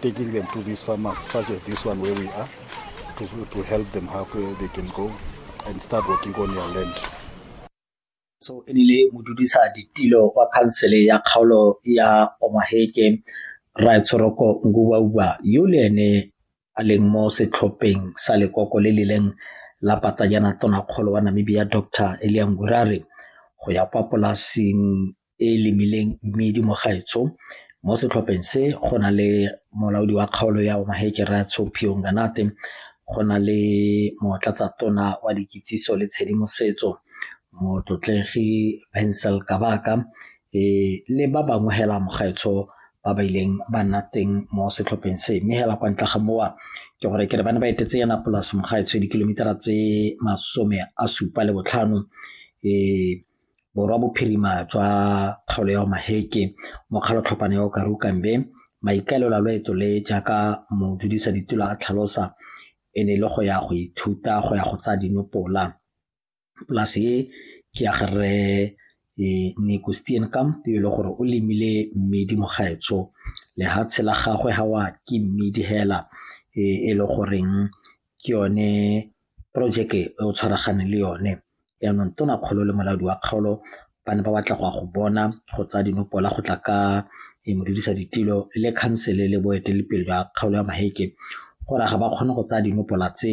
taking them to these farmers such as this one where we are to, to help them how they can go and start working on their land so e rile modudisa ditilo wa khansele ya kgaolo ya omaheke raetsorogo ngubauba yo le ene a leng mo setlhopheng sa lekoko le le leng la patajana tonakgolo wa Namibia Dr Elia Ngurare go ya kwa polasing e e lemileng mmidi mo gaetsho mo setlhopheng se go na le molaodi wa kgaolo ya omaheke ratsho phio nganate go na le motlatsa tona wa dikitsiso le tshedimosetso motlotlegi bensel kabaka e le ba bangwe hela mogaetsho ba ba ileng ba nna teng mo setlhopheng se mme hela kwa ntle ga mowa ke gore ke re ba ne ba etetse yana polase mogaetsho dikilomitara tse masome a supa le botlhano um borwa bophirima jwa kgaolo ya maheke mokgalo tlhopana ya o karukambe maikaelelo a loeto le jaaka modudisa ditulo a tlhalosa e ne e le go ya go ithuta go ya go tsaya dinopola polase e ke ya ga rre Nico Steenkamp yo e le gore o lemile mmidi mogaetsho lehatshe la gagwe ga wa ke mmidi hela e le goreng ke yone projeke e o tshwaragane le yone yaanong tona kgolo le molaodi wa kgaolo ba ne ba batla go ya go bona go tsaya dinopola go tla ka e modudisa ditilo le khansele le boeteledipele jwa kgaolo ya maheke gore ga ba kgone go tsaya dinopola tse